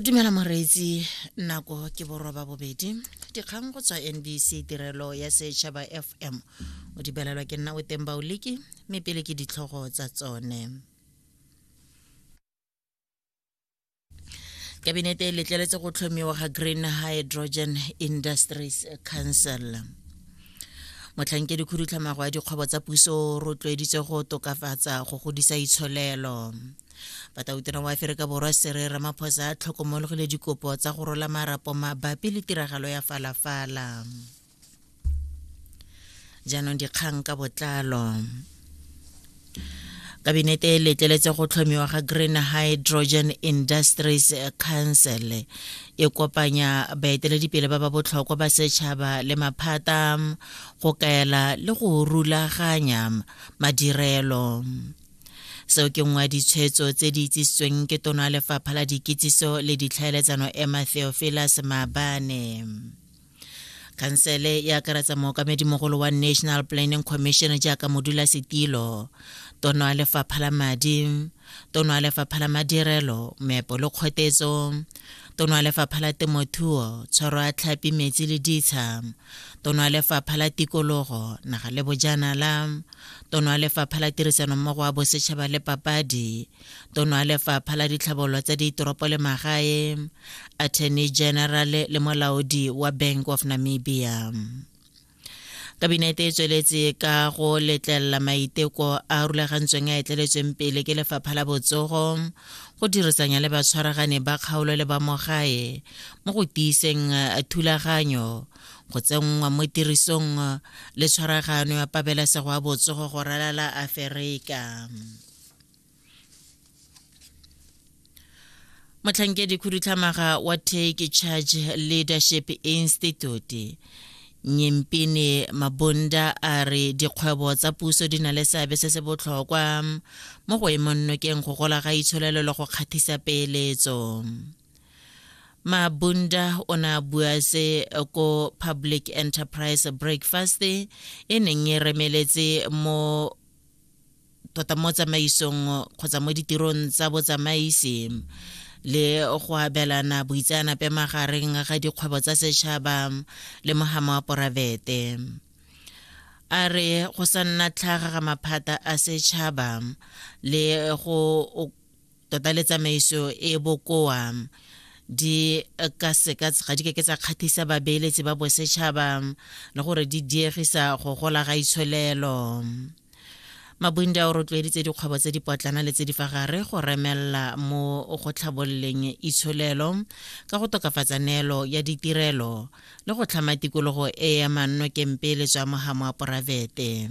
dumela moreetsi nako ke boroba bobedi dikgang go tswa nbc tirelo ya setšhaba fm o di belelwa ke nna o teng baoliki mme pele ke ditlhogo tsa tsone kabinete e letleletse go tlhomiwa ga green hydrogen industries council motlhankedi khudutlhamago ya dikgwebo tsa puso o rotloeditse go tokafatsa go godisa itsholelo batautona wa aferika borwa sere ramaphosa a tlhokomologile dikopo tsa go rola marapo mabapi le tiragalo ya falafala jaanong dikgang ka botlalo kabinete e letleletse go tlhomiwa ga green hydrogen industries council e kopanya baeteledipele ba ba botlhokwa ba setšhaba le maphata go kaela le go rulaganya madirelo seo ke nngwe ya ditshwetso tse di itsisitsweng ke tono ya lefapha la dikitsiso le ditlhaeletsano emma theophilus maabane khansele e akaretsa mookamedimogolo wa national planning commission jaaka modula setilo tono ya lefapha la madi tono ya lefapha la madirelo meepo le kgotetso tono ya lefapha la temothuo tshwaro ya tlhapi metsi le ditsha Tono ya Lefapha la Tikologo, Naga le Bojanala, Tono ya Lefapha la Tirisanommogo wa Bosetšhaba le Papadi, Tono ya Lefapha la Ditlhabololo tsa Ditoropo le Magae, Attorney General le molaodi wa Bank of Namibia. Kabinete e tsweletse ka go letlelela maiteko a rulagantsweng a etleletsweng pele ke Lefapha la Botsogo go dirisanya le batshwaragane ba kgaolo le ba mogae mo go tiiseng eh, thulaganyo go tsenngwa mo tirisong eh, le tshwaragano ya pabalesego ya botsogo go ralala aferika motlhankedi khudutlhamaga wa take charge leadership institute Nyempini Mabunda a re dikgwebo tsa puso di na le seabe se se botlhokwa mo go emong nokeng go gola ga itsholelo le go kgathisa peeletso. Mabunda o ne a bua se ko Public Enterprise Breakfast e neng e remeletse mo tota mo tsamaisong kgotsa mo ditirong tsa botsamaisi le go abelana boitseanape magareng ga dikgwebo tsa setšhaba le mogama wa poravete a re go sa nna tlhaga ga maphata a setšhaba le go tota le tsamaiso e bokoa di ka seka ga di keke tsa kgatlhisa babeeletsi ba bosetšhaba le gore di diegisa go gola ga itsholelo mabunde a o rotloeditse dikgwebo tse dipotlana le tse di fa gare go remelela mo go tlhabololeng itsholelo ka go tokafatsa neelo ya ditirelo le go tlhama tikologo e ya mannokempele tswa mohamo wa poraefete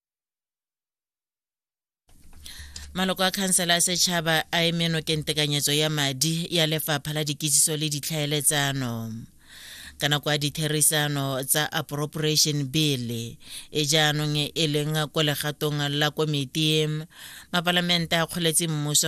maloko a khansela ya setšhaba a eme nokeng tekanyetso ya madi ya lefapha la dikitsiso le ditlhaeletsano ka nako ya ditherisano tsa appropriation bill e jaanong e leng ko legatong la komiti mapalamente a kgoletse mmuso